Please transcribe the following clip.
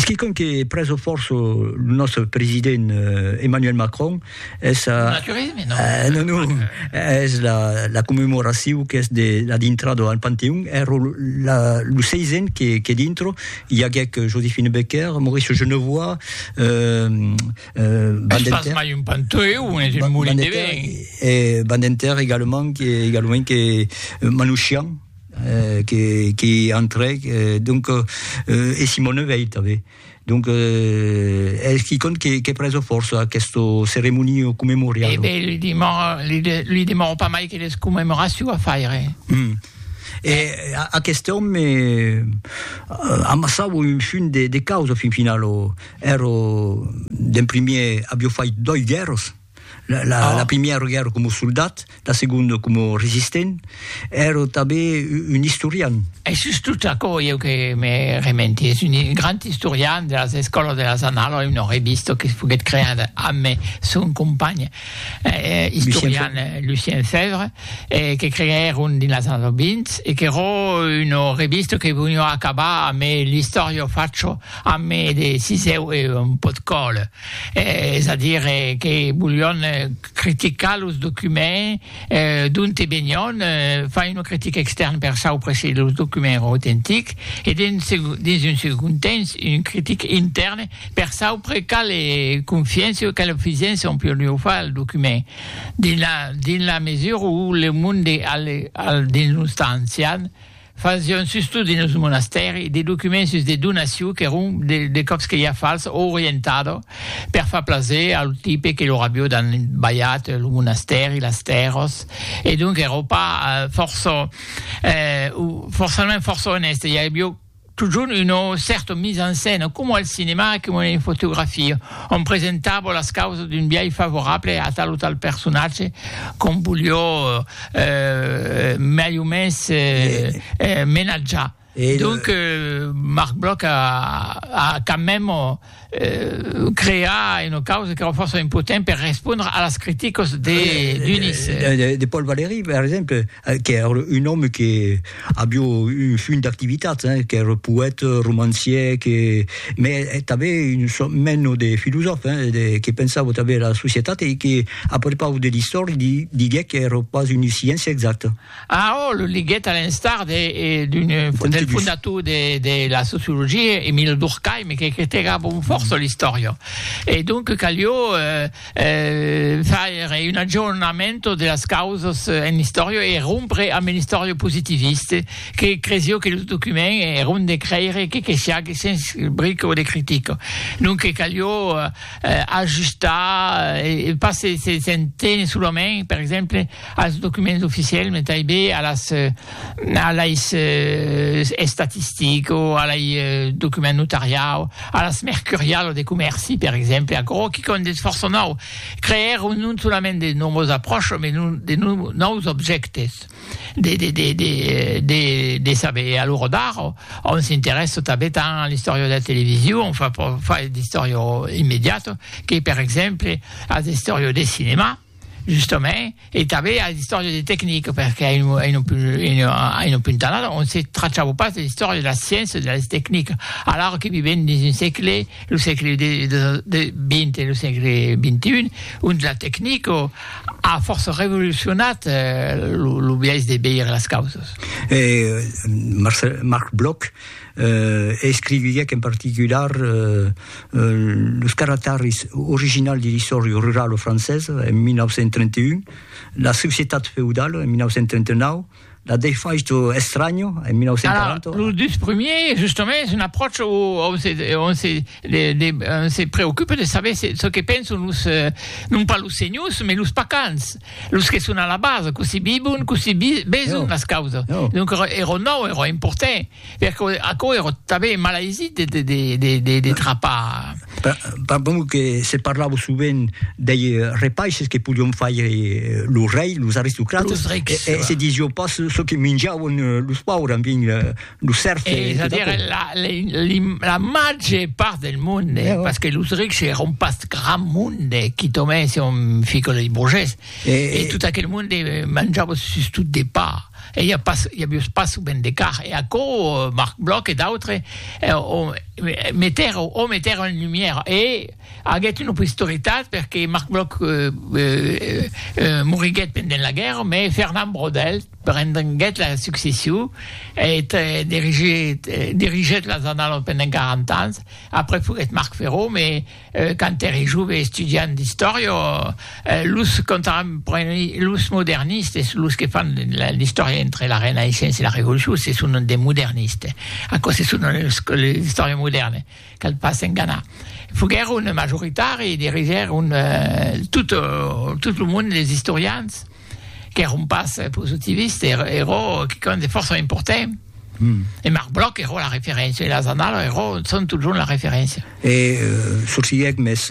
Es quicòm que prèso fòrça lo nòstre president Emmanuel Macron, es a... Naturisme, non? Eh, non, non, es la, la commemoracion qu'es de la dintrada al Panteon, èro la, lo seisen que, que dintro i aguèc Joséphine Baker, Maurice Genevoix, euh... Es pas mai un Panteon, es un molin de vent. E Badinter, egalement, que, egalement que Manouchian. Qu'i entrèc, donc, e Simone Veil tanben. Donc, es quicòm que preso fòrça aqueste ceremonio commemorial. E ben, li demoro pas mai que les commemoraciu a faire. Hum. E aqueste òme amassava un funt de causa fin finala. Ero, d'en primièr, avió fait doi guèrras. La, la, ah. la primièra guerra com soldat, la segunda com resistent, era també un historian. E sus tot aquò, eu que me rementi, és un grand historian de las escolas de las anales, una revista que foguet creada amb son company eh, historian eh, Lucien Fèvre, eh, que creèron dins las anales 20, e que era una revista que venia acabar amb l'història facho, amb de siseu e un pot còl. Es a dire que volion criticar los documents d'onte venion, far una critica extèrna per saupre se los documents èran autentics e dins un segond temps una critica intèrna per saupre quala confiança o quala fisença on podiá far al document. Dins la mesura où le monde al dins los temps ancians, Fasión sus tot dins lo monastèri de documents sus de donacion qu'èron de còps que ja fals o orientada per far plaser a lo tipe que lor avió dan balhat lo monastèri, las tèrras e donc èra pas fòrça o forçament fòrça onèste, i avió totjorn una cèrta mise en scène coma al cinemà e coma en fotografia ont presentava las causas d'un biais favorable a tal o tal personatge qu'ont voliá mai o mens menatjar. Donc Marc Bloch a quand même creat una causa qu'èra fòrça impotent per respondre a las criticas de Dunis. De Paul Valéry, per exemple, qu'èra un òme que Avió un funt d'activitats, hein, qu'ère poète, romancier, que, mès tanben un sòrt meno de filosòf, hein, de, que pensava tanben era societat e que, a prepaus de l'istòria, di, diguec qu'ère pas una sciéncia exacta. Ah, ò, lo liguèt a l'instar de, d'un, del fondator de, de la sociologia, Emile Durkheim, que critegava un fòrça l'istòria. E donc calió, eh, faire un aggiornamento de las causas en l'istòria e rompre amb l'istòria positivista que cresió que los documents èron de crèire que que siague sens bric o de critica. Donque calió ajustar e pas se se se entene solament, per exemple, als documents oficiels, mai tanben a las a lais estatistics o a lei documents notariau, a las mercurialas de comèrci, per exemple, aquò que quò n'es fòrça nòu, creèr non solament de nòvas apròchas, mai non de nòus objèctes de de de de de de saber. A l'ora d'ara, òm s'interèssa tanben tant a l'istòria de la television, enfin per fai d'istòria immediata, que per exemple a l'istòria de cinema. Justament, e tanben a l'istòria de tecnic, perque a un punt tanat on se trachava pas de l'istòria de la sciéncia e de las tecnic, alara que vivèm dins un sègle, lo sègle xx e lo sègle xxi, ont la tecnic a fòrça revolucionat lo biais de veire las causas. Marc Bloch. e escriviguèc en particular los caractaris originals de l'Istòria rurala francesa en 1931, La societat feudala en 1939, La defaixa estranya en 1940. Alara, los dus primièrs, justament, es un apròcha ont se, ont se, de, de, se preocupa de saber se, çò que pensan los, non pas los senhors, mas los pacans. Los que son a la basa, cossí vivon, cossí veson las causas. Donc ero nau, ero important, perque aquò ero tanben malaisit de trapar. Pas bon que se parlava sovent dei repaisses que podion faire los reis, los aristocrates, e se disiá pas çò que minjavan los paures, enfin, lo cercle e a dire la la màger part del monde eh, parce que los rics èron pas grand monde qui tomèn si on fica les brogès e, e tot aquel monde eh, manjava sus tot de pa e i a pas i a vius pas sou ben de car e a co eh, Marc Bloch e d'autres eh, on meter o meter en lumière e aguet une posteritat perque Marc Bloch eh, eh, eh, moriguet pendent la guerre mais Fernand Brodel Prendenguèt la succession eth dirigèt las Annales pendent 40 ans, après foguèt Marc Ferron, me quand ère jove estudiant d'istòria, los contemporanis, los modernistes, los que fan l'istòria entre la Renaissença e la Revolucion se sonan de modernistes, aquò se sonan los l'istòria modèrna, cal pas enganar. Foguèron majoritari, dirigèron tot lo monde des istorians. qu'ère un pas positiviste, era, era quicòm de fòrça important. Mm. E Marc Bloch era la referéncia, e las annalas era, son totjorn la referéncia. E euh, sorsilhèc, mès...